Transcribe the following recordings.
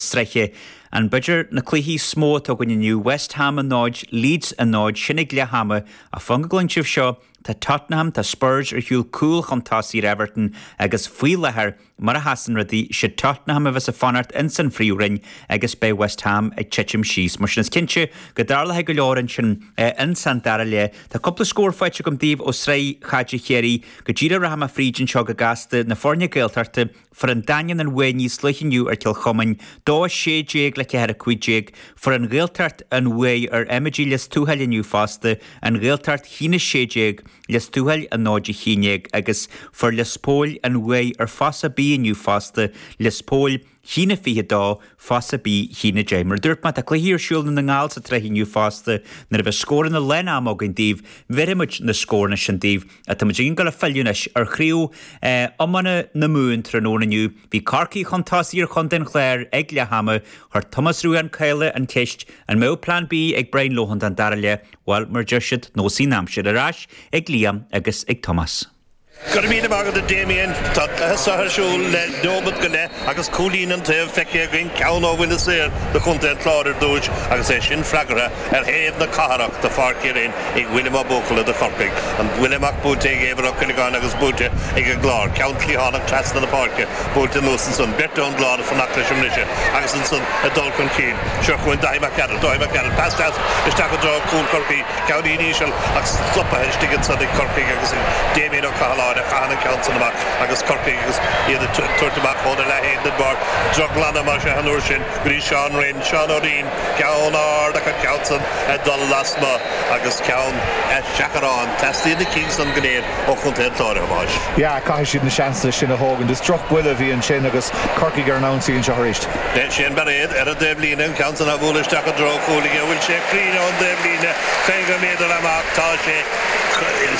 sraithe. Ansin b'fhéidir na cluichí is mó atá againn inniu, West Ham 0, Leeds 0, sin ag leath ama, ach fan go gcluin sibh seo, tá Tottenham, tá Spurs ar shiúl cúl chun tosaigh ar Everton agus faoi láthair, mar a sheasann rudaí, sé Tottenham a bheas ag fanacht ins an phríomhroinn agus beidh West Ham ag titim síos. Mar sin is cinnte go dtarlóidh go leor ansin ins an dara leath. Tá cúpla scór faighte agam daoibh ó shraith chaide Chiarraí go díreach rachaidh mé fríd anseo go gasta na foirne Gaeltachta Fuair an Daingean an bhuaidh níos luithe inniu ar Chill Chuimín, 2 16 le 4 15. Fuair an Ghaeltacht an bhuaidh ar Emmetaigh Lios Tuathail inniu fosta, An Ghaeltacht, 1 16, Lios Tuathail 0 11 agus fuair Lios Póil an bhuaidh ar Fossa B inniu fosta, Lios Póil, 1 22, Fossa B, 1 10. Mar a dúirt mé, tá cluichí ar siúl i nDún na nGall sa tsraith inniu fosta. Nuair a bheas scóranna lán ama againn daoibh, bhéarfaimid na scóranna sin daoibh. Tá muid ag gabháil a fhilleadh anois ar chraobh iomána na Mumhan tráthnóna inniu. Bhí Corcaigh chun tosaigh ar chontae an Chláir ag leath ama. Chuir Tomás Rua Ó Cadhla an cheist, an mbeadh plean B ag Brian Lohan don dara leath? Bhuel, mar a deir siad, neosfaidh an aimsir ar ais ag Liam agus ag Tomás. Go raibh míle maith agat a Damien. Tá cúrsaí ar siúl le neomat go leith agus cúilín an taobh feicthe againn, ceann ó bhuille saor do chontae an Chláir ar dtúis agus é sin freagartha Ar thaobh na cathrach de Pháirc Uí Rinn ag Liam Ó Buachalla de Chorcaigh, an buille amach buailte ag Éibhear Ó Cuileagáin agus buaite ag an gClár, ceann cliathánach trasna na páirce, buailte anuas ansan, beirt ón gClár ag fanacht leis an mbriseadh agus ansan ag dul chun cinn, seo chugainn Daithí Mac Gearailt, Dáithí Mac Gearailt, pas deas isteach i dtreo chúl Chorcaí, ceann an-íseal ach stopaithe istigh ansan ag Corcaigh agus ag Damien Ó Cathaláin a chaitheann an ceann san amach agus Corcaigh agus iad á tabhairt amach óna leath-éindean barr droglainne mar seo an uair sin go dtí Seán Rynne, Seán Ó Rinn. Ceann ard ach an ceann san ag dul lasmu' agus ceann ar seachrán. Teastaíonn na cinn san go léir ó Chontae an Chláir, a Thomáis. Yeah, caithfidh siad na seansanna sin a thógaint. Is droch buille a bhí ansin agus Corcaigh ar an ionsaí anseo aríst. Le Shane Bairéad ar an dtaobh líne, an ceann san á bhualadh isteach i dtreo chúil aige. Bhfuil sé cruinn ón dtaobh líne? Caoga méadar amach tá sé.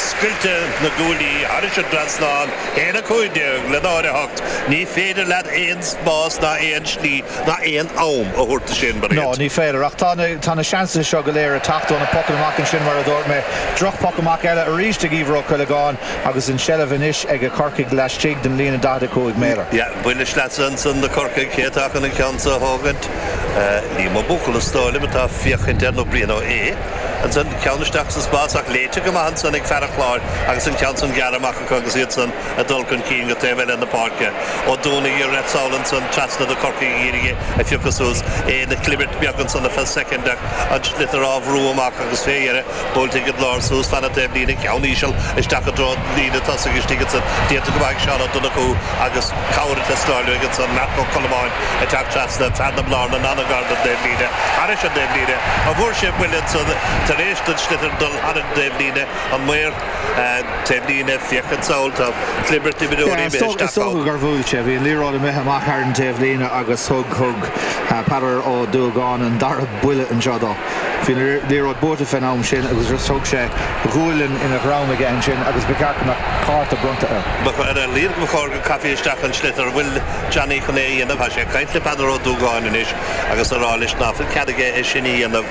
Scoilteadh na gcuaillí thairis an dtrasnán. 1:15 le 0:08. Ní féidir leat aon spás ná aon slí ná aon am a thabhairt do Shane Bairéad. No, ní féidir. Ach tá na, tá na seansanna seo go léir ag teacht ó na pocanna amach ansin, mar a dúirt mé. Drochphoc amach eile arís ag Éibhear Ó Cuileagáin agus an tseilbh anois aige Corcaigh laistigh den líne 45 méadar. Yeah, buille sleasa ansan do Chorcaigh, cé atá chun an ceann seo a thógaint? Liam Ó Buachalla is dóigh liom atá ag féachaint air nó Brian Ó hAodha. Ansan, ceann isteach sa spás ach léite go maith ansan ag fear an Chláir agus an ceann san gearr amach acu agus iad san, a dul chun cinn go taobh eile na páirce, Ó Dúnadhaigh ag rith sall ansan trasna do Chorcaigh a d'iarraidh é a phiocadh suas é ina chlibirt bheag ansan ar feadh soicind ach an sliotar á bhrú amach agus fé dheireadh buailte ag an gClár suas fan na taobhlíne, ceann íseal isteach i dtreo an líne tosaigh istigh ansan déanta go maith ag Seán Ó Donnchú agus cabhair le snárlú aige ansan, Marc Ó Colmáin ag teacht trasna fear na Blarnan ana-ghar don dtaobhlíne, thairis an dtaobhlíne an bhfuair sé buille ansan tar éis don sliotar dul thar an dtaobhlíne, an maor. Is dócha gur bhuail sé. Bhí an liathróid imithe amach thar an taobhlíne agus thug Peadar Ó Dúgáin an dara buille anseo dó. Bhí an liathróid buaite fén am sin agus thug sé gualainn ina dhrom aige ansin agus ba cheart go mbeadh cárta bronnta air.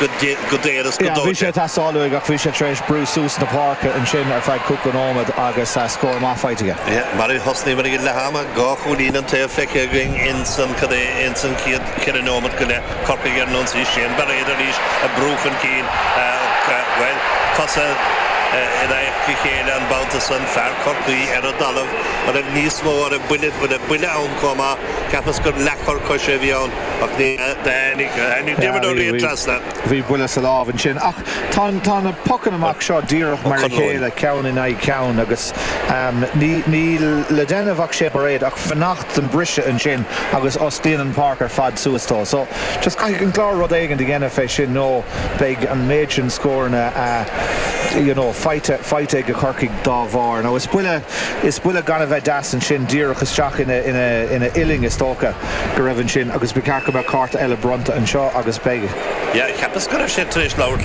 go daor is go dóite. Bhí sé tar éis éalú uaidh ach bhí sé tar éis brú suas na páirce ansin ar feadh cúpla nóiméad agus scór maith faighte aige. Mar a thosnaíomar ag leath ama, dhá chúilín an taobh feicthe againn ins an cad é ins an chéad cheithre nóiméad go leith, Corcaigh ar an ionsaí, Shane Bairéad arís ag brú chun cinn, bhuel, cosa in aghaidh a chéile an babhta san, fear Chorcaí ar an dtalamh an raibh níos mó, an raibh buille ann comh maith, cheapas gur leathchor coise a bhí ann. ach ní tháinig aon gheimhreadh riamh trasna. Bhí buille sa lámh ansin. Ach tá tá na pocanna amach seo díreach mar a chéile, ceann in aghaidh ceann, agus ní níl le déanamh ag Shane Bairéad ach fanacht don briseadh ansin agus osclaíonn an páirc ar fad suas dó. So, just caithfidh an Clár rud éigin do dhéanamh fé sin nó beidh an méid sin scóranna you know faighte faighte aige Corcaigh dá bharr. Now is buille is buille gan a bheith deas ansin díreach isteach ina ina ina uillinn is dócha. go raibh ansin agus ba cheart go mbeadh cárta eile bronnta anseo agus beidh. Yeah, cheapas go raibh sé tar éis labhairt le.